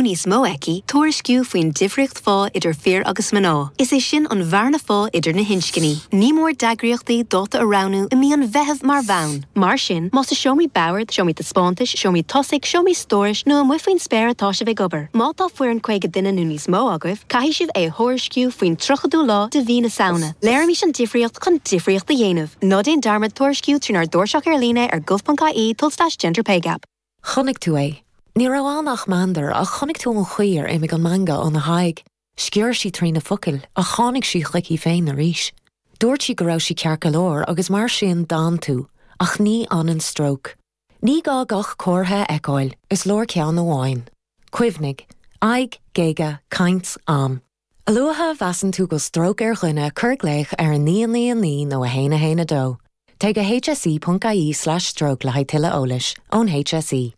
níos mó aici tuairisciú faoin difríocht phá idir fir agus mná, is é sin an bhearna phá idir na hinscní. Ní mór d'eagraíochtaí dáta a roghnú i mí an Mheithimh mar bhonn. Mar sin, más i seomraí boird, seomraí taispeántais, seomraí tosaigh, seomraí stórais nó amuigh faoin spéir atá sibh ag obair, má tá foireann 50 duine nó níos mó agaibh, caithfidh sibh é a thuairisciú faoin 30ú lá de mhí na Samhna. Léirímis an difríocht chun difríocht a dhéanamh. Ná déan dearmad tuairisciú trínár dtairseach ar líne ar gov.ie tulslais gender pay gap. Chonaic tú é. Ní raibh ann ach meandar, ach chonaic tú an chaoi ar imigh an meangadh óna haghaidh. Sciorr sí trí na focail, ach tháinig sí chuici féin arís. Dúirt sí go raibh sí ceart go leor, agus mar sin d'fhan tú. Ach ní fhanann stróc. Ní gá gach comhartha a fheiceáil, is leor ceann amháin. Cuimhnigh. Aghaidh, géaga, caint, am. A luaithe a mheasann tú go bhfuil stróc ar dhuine cuir glaoch ar 999 nó 112. Téigh go hse.ie/stroke le haghaidh tuilleadh eolais ón HSE.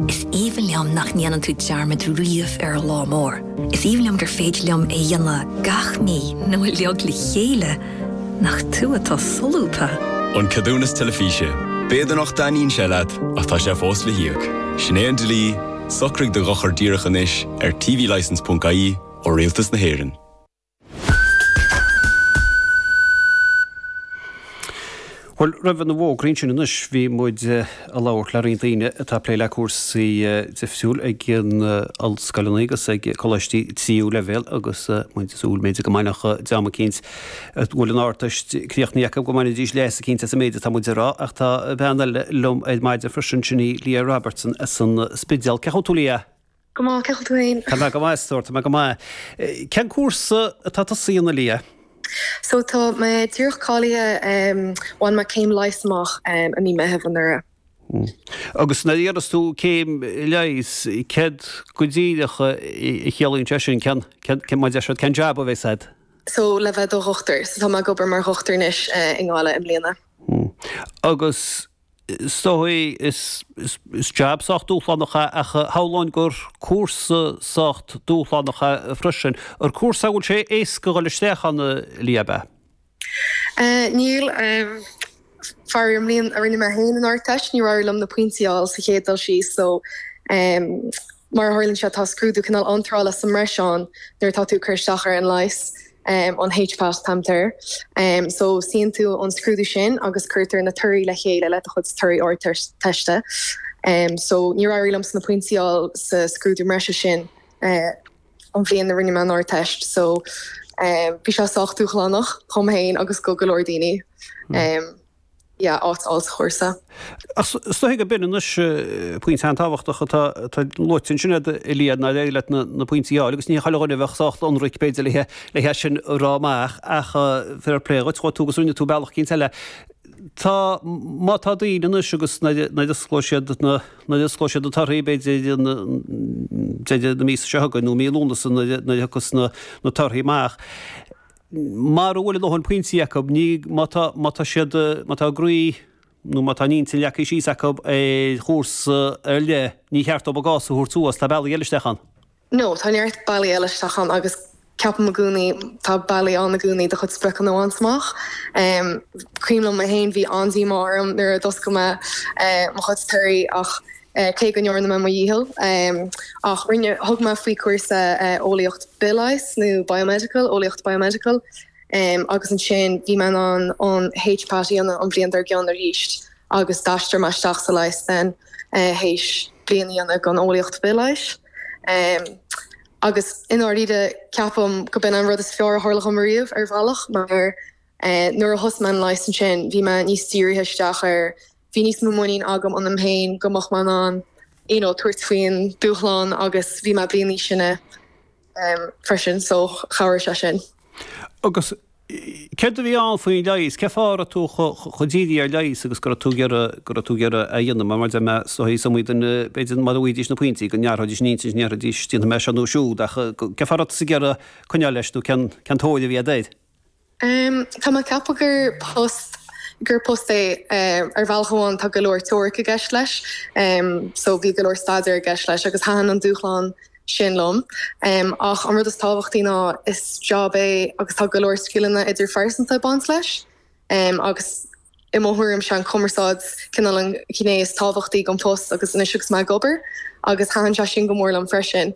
Is aoibhinn liom nach ndéanann tú dearmad riamh ar an lá mór. Is aoibhinn liom gur féidir liom é dhéanamh gach mí nó uilig le chéile nach tú atá solúbtha. An ceadúnas teilifíse. B'fhéidir nach dtaitníonn sé leat ach tá sé fós le híoc. Sin é an dlí. Socraigh do dhochar díreach anois ar tvlicence ponc ie ó Rialtas na hÉireann. Bhuel, roimh na fógraí sin anois, bhí muid ag labhairt le roinnt daoine atá ag plé le cúrsaí difriúla ag ollscoileanna agus ag coláistí tríú leibhéal agus muid ag súil, b'fhéidir, go mbeadh dream eicínt A bhfuil an Ardteist críochnaithe acu go mbainfidís leas eicínt as an méid atá muid ag rá? Ach tá bean eile liom ar maidin freisin, sin í Leah Robertson as an Spidéal. Cén chaoi a bhfuil tú Leah? Go maith, cén chaoi a bhfuil tú féin? Tá mé go maith, a stór, tá mé go maith. Cén cúrsa atá tusa a dhéanamh Leah? So tá mé díreach cáilithe, bhain mé céim leighis amach i mí Meitheamh anuraidh. Hm. Agus nuair a dhéanfas tú céim leighis, céard go díreach a chiallaíonn sé sin? Cén, cén, cén, mar a deir siad, cén jab a bheas agat? so, le bheith i do dhochtúir. So tá mé ag obair mar dhochtúir anois i nGaillimh i mbliana. Hmm. Agus is dóigh is, is, is jab sách dúshlánach é ach shamhlóinn gur cúrsa sách dúshlánach é freisin. An cúrsa é a bhfuil sé éasca a dhul isteach ann, Leah, ab ea? Eh, níl. Faraor, an bhliain a rinne mé féin an Ardteist níor éirigh liom na pointí a fháil sa chéad dul síos so mar a tharlaíonn sé tá scrúdú cineál iontrála sa mbreis ann nuair atá tú ag cur isteach ar an leigheas, an HPAT a thugtar air so suíonn tú an scrúdú sin agus cuirtear na torthaí le chéile le do chuid torthaí Ardteiste so níor éirigh liomsa na pointí a fháil sa scrúdú breise sin. an bhliain a rinne mé an Ardteist so bhí sé sách dúshlánach dhom féin agus go go leor daoine. Hmm. yeah, áit a fháil sa chúrsa. Ach is dóigh go b'in anois eh, pointe an-tábhachtach atá luaite ansin ad, a Liadh, nár éirigh na pointí a fháil agus ní chuile dhuine a bheadh sách ionraic b'fhéidir le le hea sin a rá amach ach eh, fair plé dhuit chuaigh tú agus rinne tú bealach eicínt eile. Tá má tá daoine anois agus na na siad na nuair a osclóidh siad na torthaí, b'fhéidir deireadh na míosa seo chugainn nó mí Lúnasa nuair a thiocfas na torthaí amach, mura bhfuil a ndóthain pointí acu, ní, má tá, má tá siad, má tá a gcroí nó má tá a n-intinn leagtha síos acu ar chúrsa ar leith, ní ceart dóibh a gcás a thabhairt suas, tá bealaí eile isteach ann. No, tá neart bealaí eile isteach ann agus ceapaim i gcónaí tá bealaí ann i gcónaí le do chuid spriocanna bhaint amach. Cuimhin liom mé féin bhí an-díomá orm nuair a d'oscail mé mo chuid torthaí ach cé go ndearna mé mo dhícheall ach rinne thug mé faoi cúrsa eolaíocht bithleighis nó biomedical eolaíocht biomedical agus ansin bhí mé in ann an HPAT a dhéanamh an bhliain dár gcionn arís. agus d'aistrigh mé isteach sa leigheas ansin théis bliain a dhéanamh gon eolaíocht bithleighis agus i ndáiríre ceapaim go b'in an rud is fearr a tharla dhom riamh ar bhealach mar nuair a thosaigh mé an leigheas ansin bhí mé níos dírithe isteach air, bhí níos mó muinín agam ionam féin go mbeinn mé in ann you know tabhairt faoin dúshlán agus bhí mé bliain níos sine. freisin so chabhraigh sé sin. Agus céard a bhí ann faoin leigheas? Cén fáth a raibh tú chomh dírithe ar leigheas agus go raibh tú ag iarraidh é a dhéanamh? Mar mar a deir mé is dóigh is iomaí duine b'fhéidir mara bhfaighidís na pointí go n-athróidís an intinn is ndéarfaidís déanfaidh mé seo nó siúd ach cén fáth a raibh tusa ag iarraidh coinneáil leis nó cén tarraingt a bhí agat air? Tá mé ag ceapadh gur post gur post é ar bhealach amháin tá go leor teoiric i gceist leis so bhí go leor staidéar i gceist leis agus thaitin an dúshlán sin liom ach an rud is tábhachtaí ná is job é agus tá go leor scileanna idirphearsanta ag baint leis agus i mo thuairim 'sé an cumarsáid cineál an ghné is tábhachtaí den phost agus anois agus mé ag obair agus thaitin sé sin go mór liom freisin.